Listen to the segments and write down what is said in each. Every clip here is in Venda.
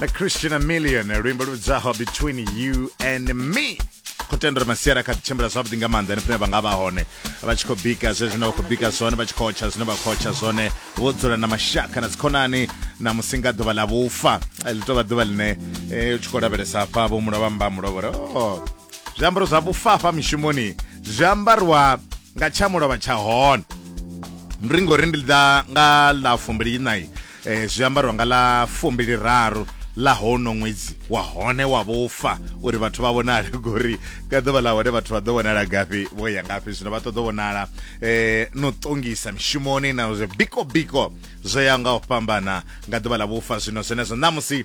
na christian amilion luimbo ludzaho between you and me khou tenda uri masiari a kha ḓi tshimbila zwavhuḓi nga maanḓa henefhine vha nga vha hone vha tshi khou bika zwe zwine vha khou bika zwone vha tshi khou tsha zwine vha khou tsha zwone vho dzula na mashaka na dzikhonani na musi nga ḓuvha ḽa vhufa ḽi tou vha ḓuvha ḽine eh, u tshi khou lavhelesa hafha vho mulovha mba mulovhore o zwiambaro zwa vhufa hafha mishumoni zwi ambariwa nga tsha mulovha tsha hone ndi ri ngori ndi ḓa nga ḽa fumbili inai E, zwi ambarwa nga ḽa fumbiliraru ḽa hono ṅwedzi wa hone wa vhufa uri vhathu vha vhonale ngori nga ḓuvha ḽa hone vhathu vha ḓo vhonala gafhi vho ya ngafhi zwino vha ṱoḓo vhonala eh, no ṱongisa mishumoni na zwe biko biko zwo ya nga u fhambana nga ḓuvha ḽa vhufa zwino zwenezwo ṋamusi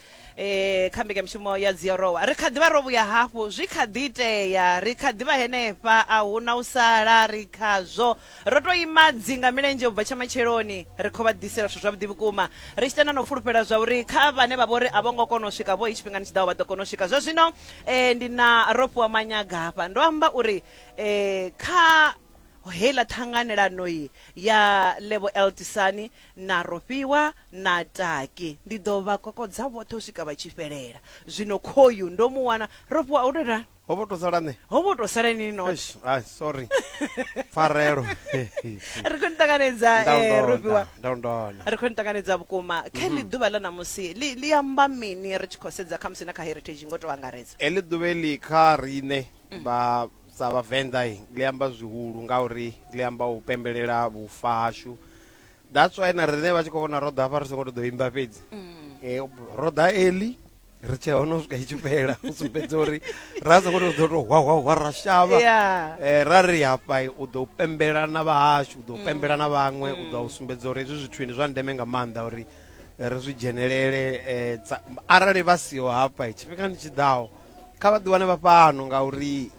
e, kha mbekanyamushumo ya dziorowa ri kha ḓivha ro vhuya hafhu zwi kha ḓi itea ri kha ḓivha henefha a hu na u sala ri khazwo ro to ima dzinga milenzhe u bva tsha matsheloni ri khou vha ḓisela zwithu zwavhuḓi vhukuma ri tshi tenda na u fulufhela zwa uri kha vhane vha vho ri a vho ngo kona u swika vho i tshifhingani tshi ḓaho vha ḓo kona u swika zwa zwino um ndi na ro fhiwa manyagafha ndo amba uri um kha heiḽa ṱhanganelano ya lebo eltisani na rofhiwa Na taki, ndi ḓo vha kokodza vhoṱhe u swika vha tshi fhelela. Zwino khoyu, ndo mu wana, ro fhiwa, ho tou ita. Ho vho tou sala nṋe. Ho vho tou sala inwi ni noṱhe. Eish, ai, sorry. Pfarelo. Ri khou ni ṱanganedza, Nda u eh, ro fhiwa. ndonda, nda u ndona. Ri khou ni ṱanganedza vhukuma. Kha heḽi ḓuvha ḽa ṋamusi, ḽi, ḽi amba mini ri tshi khou sedza khamusi na kha Heritage ngo tou angaredza? Heḽi ḓuvha heḽi kha riṋe vha sa Vhavenḓa ḽi amba zwihulu ngauri ḽi amba u pembelela vhufa hashu that's why na riṋe vha tshi khou vhona ro ḓa hafha ri songo to ḓo imba fhedzi mm. eh, ro ḓa eli ri tshea hone u swika i tshi fhela u sumbedza uri ra songo to ḓo to hwahwahwa ra shavha eh, ra ri hafha u ḓo pembela na vhahashu u ḓo mm. pembela na vhaṅwe u ḓo mm. sumbedza uri hezwi zwithu ndi zwa ndeme nga maanḓa uri ri zwi dzhenelele eh, arali vha siho hafha tshifhingani tshi ḓaho kha vha ḓiwane vha fhano ngauri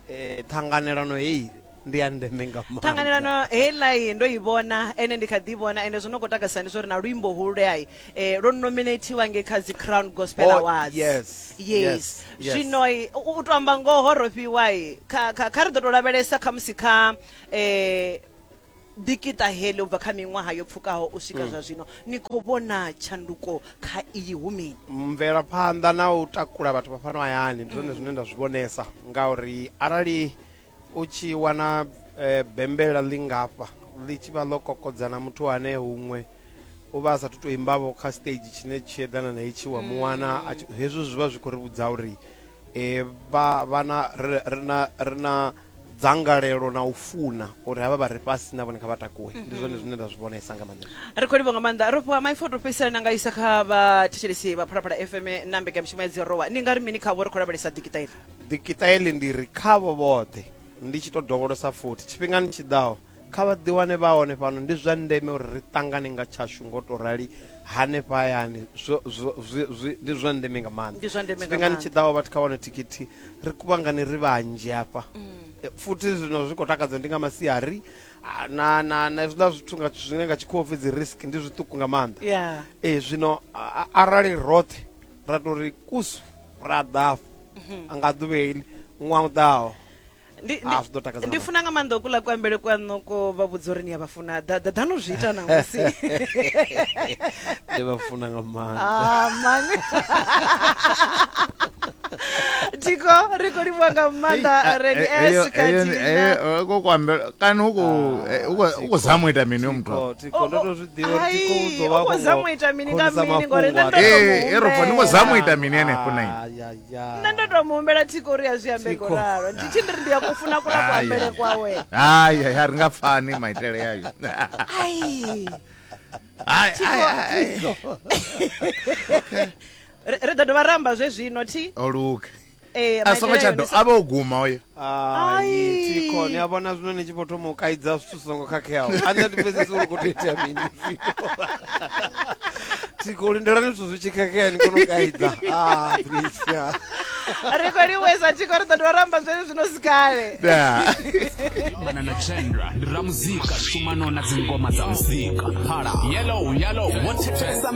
ṱhanganelano heyi ndi ya ndeme nga maanḓa. ṱhanganelano heiḽai ndo i vhona ene ndi kha ḓi i vhona ende zwo no khou takasisa ndi zwa uri na luimbo hululeai eh, lwo nominatiwa nge kha dzi crown gospel Oh, awards yes, yes yes, yes. zwino i- u u to amba ngoho ro fhiwai kha kha- kha ri ḓo to lavhelesa khamusi kha eh dikita heḽi u bva kha miṅwaha yo pfukaho u swika zwa zwino ni khou vhona tshanduko kha iyi hu mini mvelaphanḓa na u takula vhathu vha fhano hayani ndi zwone zwine nda zwi vhonesa ngauri arali u tshi wana eh, bembela ḽi ngafha ḽi tshi vha ḽo kokodza na muthu ane huṅwe u vha a sathu tou imbavho kha stage tshine tshi eḓana na itshi wa mu wana a tshi- hezwo zwi vha zwi khou ri vhudza uri eh, vha vha na ri- ri na- ri na dzangalelo na u funa uri havha vha re fhasi na vhone kha vha takuwe ndi zwone zwine nda zwi vhonesa nga maanḓa ri khou livha nga maanḓa ro fhiwa maipfo to fhedzisela na nga isa kha vhathetshelesi vha phalaphala fm na mbekanyamushumo ya dzirowa ni nga ri mini khavho ri khou lavhelesa dikiṱa ifa Dikiṱaeli ndi ri khavho vhoṱhe, ndi tshi tou dovholosa futhi, tshifhingani tshi ḓaho, kha vha ḓiwane vha hone fhano. Ndi zwa ndeme uri ri ṱangane nga tshashu nga u tou rali hanefha hayani. Zwo, zwo, zwi, zwi, ndi zwa ndeme nga maanḓa. Ndi zwa ndeme nga Tshifhingani tshi maanḓa. ḓaho vhathu kha wane thikhithi, ri kuvhangane ri vhanzhi hafha. Eh, Futhi zwino zwi khou takadza ndi nga masiari ah, na, na, na hezwiḽa zwithu nga, zwine nga tshikhuwa upfi dzi risk ndi zwiṱuku nga maanḓa. Yeah. Eh, zwino a- a- arali roṱhe ra tou ri kusu ra ḓa afho mhm. a nga ḓuvha iḽi ṅwaha u ḓaho ndi funa nga maanḓa okuḽa kuambele kwaṋo ko vha vhudza uri ni ya vha funa ḓaḓanu zwi ita na musi ndi vha funa nga maanḓaamani ah, tiko ri khou livhuwa nga maanḓa reni esikatiko kuambela kana u khou zama u ita mini yo muthu erofa ni ngo zama u ita mini henefho na nṋe ndo to muhumbela thiko uri ya zwi ambe ngo ralo ndi tshi ndiri ndi ya kufuna kula kuambele kwawe hayi hayi a ri nga pfani maitele yayo ri ḓo dovha ramba zwe zwino thi oluke Ee, a songo maitele tsha ayo do ndi sa- a vha o guma oyo Ai. tiko ni a vhona zwino ni tshi vho thoma u kaidza zwithu zwi songo khakheaho a nṋe ndi pfesesi uri khou tou itea mini tiko lindelani zwithu zwi tshi khakhea ni kone u kaidza Ah, Patricia. ri khou livhuisa tiko ri ḓo dovha ra amba zwene zwino si kale Da. fhambana na chendra ndi ramuzika shumano na dzingoma dza muzika phala yellow yellow wo thetshelesa